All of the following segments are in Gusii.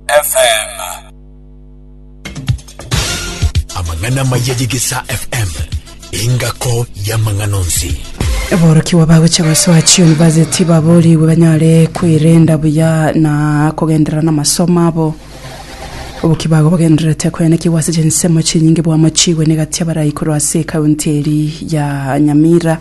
FM. Amang'ana amaya y'Egesaa FM, engako y'amang'ana onsi. Aborokigwa bagocha gosoa chiuniversity baboorigwe banyare kwirenda buya na kogenderera n'amasomo abo oboki bago bagendererete koyanekigwa ase chinsemo chinyinge bwamo chigwe negatia barayi korwa ase ekaunti eri ya nyamira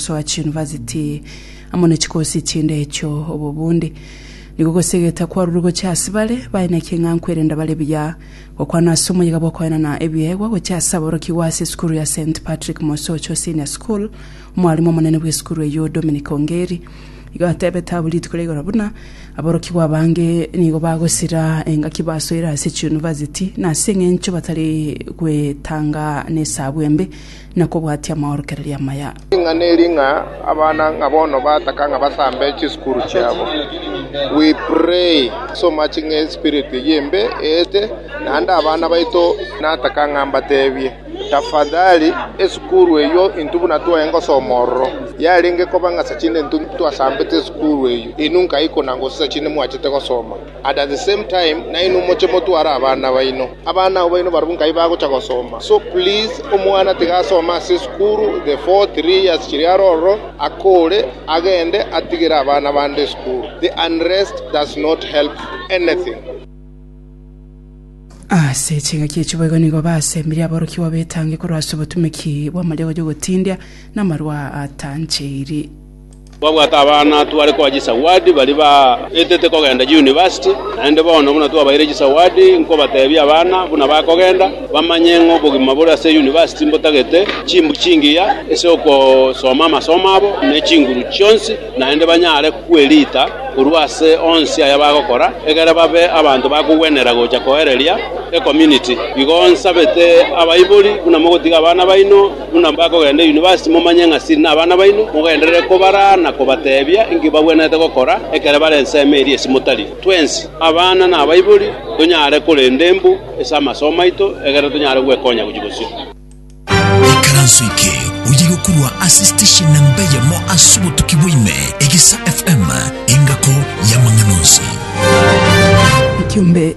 gosoa chiuniversity amo ne chikosi chinde echio obo bundi nigo gosegete kwarure gochia ase bare baye na eking'ankwa erinde bare buya gokwana ase omoyega bw'okoenana ebiegwa gochia ase aborokigwa ase esukuru ya St Patrick Mosocho Senior School. Omwarimu omonene bw'esukuru eyio Dominic Ongeri igo atebete abwo rituko ria igoro buna aborokigwa abange nigo bagosira engaki basoire ase chiuniversity na ase eng'encho batari gwetanga nesabu embe na kobwatia amaorokererio amaya. Ring'ana eri ng'a abana ng'a bono bataka ng'a basambe chisukuru chiabo. We pray so much ng'a espirit eye embe eete naende abana baito nataka ng'a mbatebie tafadhali esukuru eyio intwe buna twaye ngosoma ororo yarenge koba ng'a sachinde intwe twasambete esukuru eyio inwe nkaikuna gose sachinde mwachete gosoma. And at the same time nainwe moche motware abana baino, abana abo baino barabwo nkai bagocha gosoma, so please omwana tiga asome ase esukuru the four three years chiria are ororo akore agende atigere abana bande esukuru, the unrest does not help anything. Ase chingaki echi boigo nigo basembirie aborokigwa betange korwa ase obotumeki bw'amariagocha ogotindia namarwa atancheiri. Twabwate abana tware koa chisawadi baria baetete kogenda chiyunivasiti, naende bono buna twabaeire chisawadi, nkobatebia abana buna bakogenda, bamanye ng'a obogima bore ase yunivasiti mbotagete chimbu chingiya ase ogosoma amasomo abo ne chinguru chionsi, naende banyare kwerita korwa ase onsi aya bagokora, egere babe abanto bakogwenera gocha koereria ecommunity. Igo nsabete abaibori buna mogotiga abana baino, Buna mbakogenda yunivasiti, momanye ng'a siri nabana baino, mogenderere kobaraa na kobateebia inki bagwenerete gokora ekero bare ensemo eria ase motari. Twensi, abana na abaibori, tonyare korenda embu ase amasomo aito ekero tonyare gwekonya gochia bosio. Ekaranso eke oyegokurwa ase station namba eyemo ase obotuki bwa ime, Egesa FM, engako y'amang'ana onsi. Ekiombe.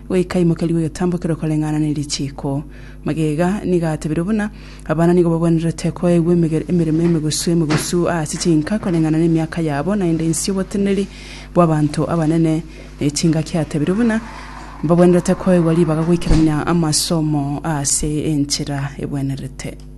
Goika imokia ribe ogetambokero koreng'ana ne richiiko. Magega nigo atebirie buna abana nigo bagwenerete koegwa emegere emeremo emegusu emegusu ase chinka koreng'ana nemiaka yabo naende inse y'oboteneneri bw'abanto abanene ne chingaki atebirie buna mbagwenerete koegwa ribaga goikerania amasomo ase enchera egwenerete.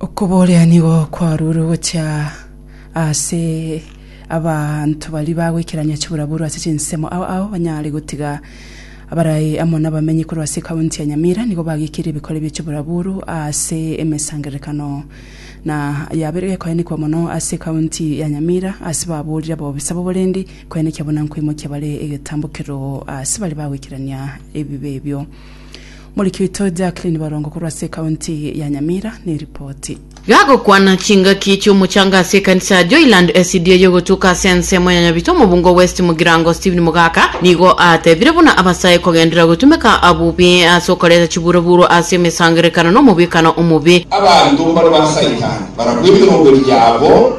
Okoboria nigo kwarure gochia ase abanto baria bagoikerania chiburaburu ase chinsemo ao ao banyare gotiga abarai amo nabamenyi korwa ase ekaunti ya Nyamira nigo bagekirie ebikore bie chiburaburu ase emesangererekano na yabeire gekoenekwa mono ase ekaunti ya Nyamira ase baborire abobisa b'oborendi koenekia buna nkoimokia bare egetambo keroo ase baria bagoikerania ebibe ebio. Moriki oito Jacqueline Barongo korwa ase ekaunti ya Nyamira neripoti. Gagokwana chingaki chi'omochanga ase ekanisa ya Joyland SDA y'ogotuka ase ensemo ya Nyabito omobungo West Mugirango Stephen Mogaka nigo atebire buna abasae kogendera gotumeka bobe ase okoreta chiburoburo ase emesangererekano na omobwekano omobe. Abanto mbare ba Saitani barabwo emerongo yabo.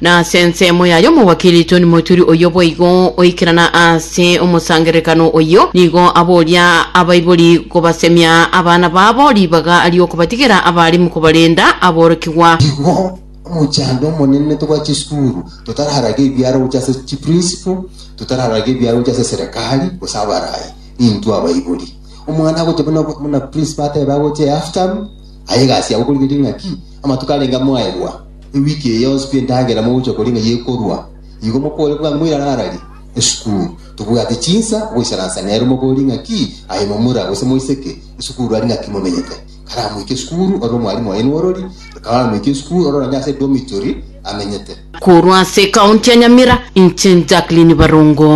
Na ase ensemo ya y'omowakiri Tony Moturi oyio boigo oikerana ase omosangererekano oyio, nigo aboria abaibori kobasemia abana babo ribaga ri'okobatigera abalimu kobarenda aborokigwa. Igo omochando omonene togwa chisukuru totararaga ebiara gocha ase chiprinciple, totararaga ebiara gocha ase eserekari gose abarai, nintwe abaibori. Omwana agocha buna buna principal atebe agocha ehalf term, aye egasi yago okorigereria ng'a ki? Amatuko arenge amo aegwa. Ewiki eye yonsi pi endagera mogocha koria ng'a yekorua, igo mokore bwango moirarararie esukuru. Tobwati chinsa goisaransa nere mogori ng'aki aye momura gose moiseke esukuru ari ng'aki momenyete. Kare amoike esukuru ore omwalimu oye n'orori, kare amoike esukuru ore onye ase edormitory amenyete. Korwa ase ekaunti ya Nyamira, inche Jacqueline Barongo.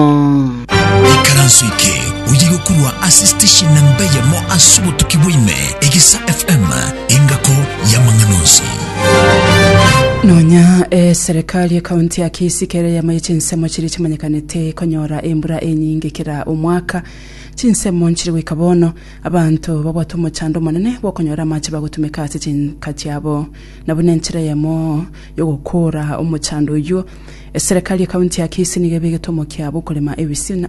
Ekaranso eke oye gokorwa ase station namba eyemo ase obotuki bwaime, Egesa FM, engako y'amang'ana onsi. Nonya eserekari ekaunti ya Kisii kere eyemo ye chinsemo chiria chimanyekanete konyora embura enyinge kera omwaka. Chinsemo nchire goika bono, abanto babwate omochando omonene bw'okonyora amache bagotumeka ase chinka chiabo. Na buna enchera eyemo, yogokoora omochando oyio, eserekari y'ekaunti ya Kisii nigo ebegete omokia bw'okorema ebisina.